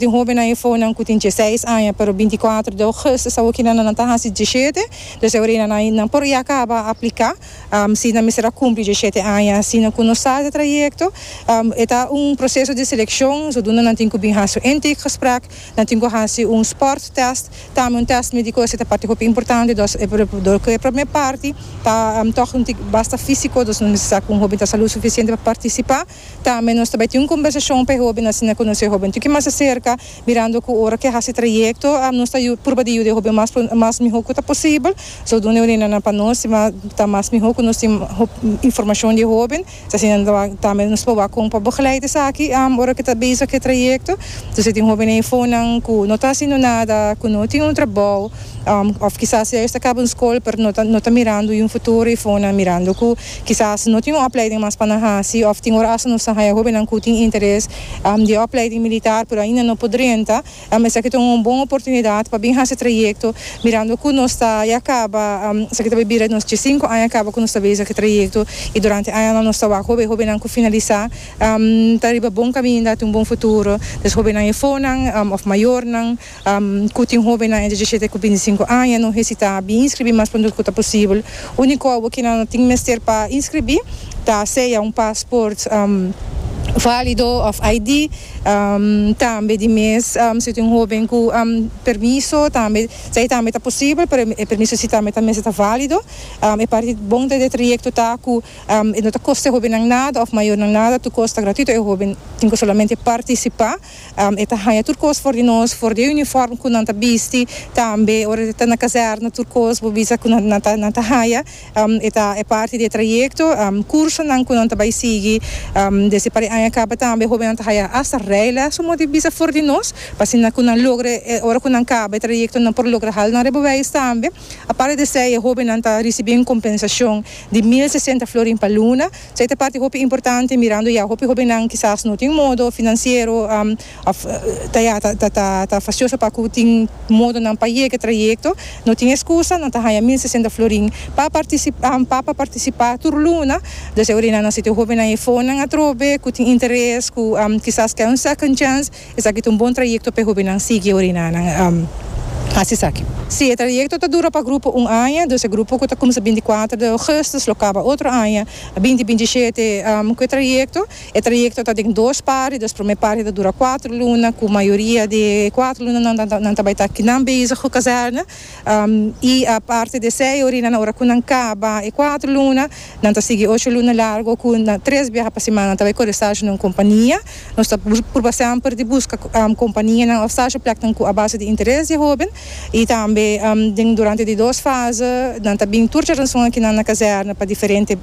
Tin hóbennan i fonan ku tin dieseis aña pero binti i kuater de ougùstus awor kinan nan ta hasi diesshete, dus e orena nan nan por ya kaba apliká si nan mester a kumpli diesshete aña. Asina ku nos start e trayekto e ta un proseso di selekshon sodunda nan tin ku bin hasi un intake gesprek, nan tin ku hasi un sport test, tambe un test médiko esei ta parti hopi importante dos e do ku e promé parti ta tòg un tik basta físiko dos nos mester sa ku un hóben ta salud sufisiente pa partisipá. Tambe nos ta bai tin un kombersashon pa e hoben asina konosé e hoben toki mas di serka, mirando ku ora ke hasi trayekto nos ta purba di yuda e hoben mas pronto mas mihó ku ta posibel, zodoende un reunionnan pa nos ta mas mihó ku nos tin hopi informashon di e hoben, ta asina tambe nos ta proba kon pa begeleid esaki ora ke ta bezig ku e trayekto, entonces tin hoben efónan ku no ta haciendo nada, ku no tin un trabou, òf kisas ya ellos ta kaba un skol pero no ta no ta mirando yu futuro efónan mirando ku. Kisas no tin un opleiding mas pa nan hasi òf tin ora asta nos ta haña hobennan ku tin interes di e opleiding militar pero ainda no por drenta. Esaki ta un bon oportunidat pa bin hasi trayekto mirando ku nos ta ya kaba esaki ta bai bira nos dje sinku aña kaba ku nos ta bai esaki trayekto i durante añanan nos ta wak hobe hobennan ku finalisá ta riba bon kaminda, ta un bon futuro des hobennan efónan òf mayornan. Cu tin hobennan entre diecisiete cu binticinco aña no hesita a bin inscribi mas pronto cu ta posibel. Unico obo cu nan tin mester pa inscribi ta sea un paspoort valido of ID. Tambe di mes si tin hoben cu permiso tambe ta e tambe ta posibel pero e permiso si tambe ta mester ta valido. E parti bon den e trayecto ta cu e no ta costa e hobennan nada of mayornan nada tur cos ta gratuito e hoben tin cu solamente participa. E ta haña tur kos for di nos, for di e uniform ku nan ta bisti, tambe ora ta na kazèrna tur kos bo bisa ku nan ta nan ta haña. E ta e parti di e trayekto, kursonan ku nan ta bai sigui. Desha pa e aña kaba tambe hóbennan ta haña hasta rèiles so moda bisa for di nos, pa asina ku nan logra e ora ku nan kaba e trayekto nan por logra hala nan rebobeis tambe. Aparte di esei e hóbennan ta risibí un kompensashon di mil sesenta florin pa luna. Esei ta parti hopi importante mirando ya hopi hobennan kisas no tin modo finansiero of ta ya ta fasioso pa ku tin modo nan pa yega trayekto no tin eskusa nan ta haña mil sesenta florin pa pa partisipa tur luna dus esei orinan nan siti hobennan e fondnan atrobe ku tin interes ku kisas kè un second chance. Esaki ta un bon trayekto p'e hobennan sigui ora i nannan hasi esaki. Si e trayekto ta dura pa grupo un aña, dus e grupo ku ta kuminsá binti kuater di ougùstus lo kaba otro aña binti binti shete ku e trayekto. E trayekto ta den dos parti, dus promé parti ta dura kuater luna ku mayoria di e kuater lunanan nan ta bai ta kinan bezig ku kazèrna I aparte di esei, ora i nan ora ku nan kaba e kuater luna, nan ta sigui ocho luna largo ku na tres biaha pa simana nan ta bai kore stage na un kompania. Nos ta purba semper di buska kompanianan òf stage pleknan ku a base di interes di e hoben. I tambe den durante di dos fase nan ta bin tur djaranson akinan na kazèrna pa diferente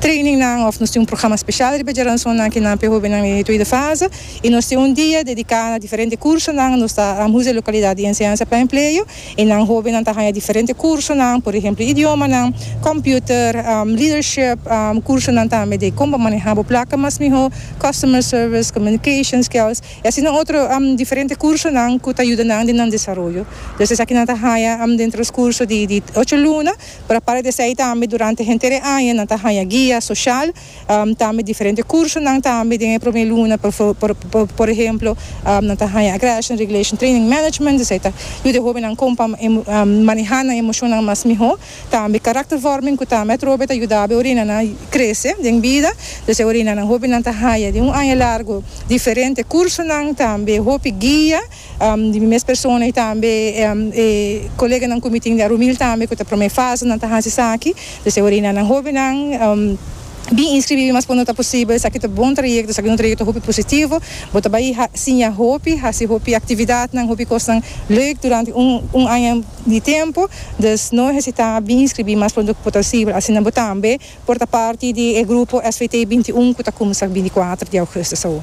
treiningnan òf nos tin un programa spesial riba djaranson akinan pa e hobennan den e tweede fase. y nos tin un dia dedica na diferente cursonan, nos ta Rambus e localidad di enseñanza pa empleo y nan hobennan ta haya diferente cursonan, por ehemplo idiomanan, computer, leadership, cursonan tambe de con pa maneha bo placa mas miho, customer service, communication skills y asina otro diferente cursonan cu ta yuda nan den nan desaroyo. Pues esaki nan ta haya den transcurso di ocho luna pero aparte di esey tambe durante henter e aña nan ta haya guia social, Tambe diferente kursonan tambe den e promé luna, por ehemplo nan ta haña Aggression Regulation Training Management, esei ta yuda e hóbennan kon pa manehá nan emoshonnan mas mihó, tambe karaktervorming ku tambe atrobe ta yuda bo orinanan krese den bida, entonces e orinanan hóbennan ta haña den un aña largu diferente kursonan tambe hopi guia. Di mi mes persona y tambe e coleganan cu mi tin di Arumil tambe cu ta prome fase nan ta haci esaki. Pues e orina nan hobennan bin inscribibi mas cuando ta posibel. Esaki ta bon trayecto, esaki un trayecto hopi positivo. Bo ta bay siña hopi, haci hopi actividadnan, hopi cosnan leuk durante un aña di tempo. Dus no hesita, bin inscribi mas prondo cu posibel. Asina bo tambe por ta parti di e grupo SVT21 cu ta cuminsa bini cuater di augustus awo.